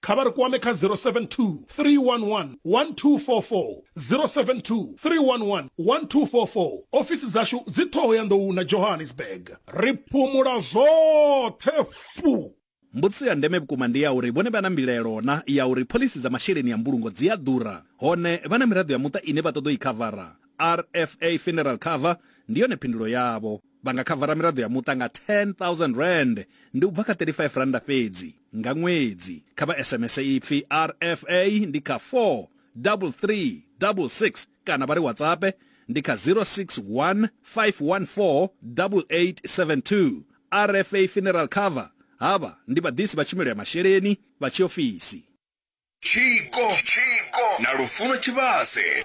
kha vha ri kwame kha 072 311 1244 072 311 1244 ofisi dzashu dzi ṱhoho ya nḓou na johannesburg ri phumula zwoṱhe fu Mbudziso ya ndeme vhukuma ndi ya uri vhone vha na mbilelo na ya uri phoḽisi dza masheleni ya mbulungo dzi a ḓura hone vha na miraḓo ya muṱa ine vha ṱoḓa u i khavara. RFA Funeral Cover ndi yone phindulo yavho. Vha nga khavara miraḓo ya muṱa nga R10,000, ndi u bva kha R35 fhedzi, nga ṅwedzi. Kha vha SMS ipfi RFA ndi kha 43366 kana vha ri WhatsAppe ndi kha 061 514 8872. RFA Funeral Cover Havha ndi vhaḓisi vha tshumelo ya masheleni vha tshiofisi. Tshiko na Lufuno Tshivhase.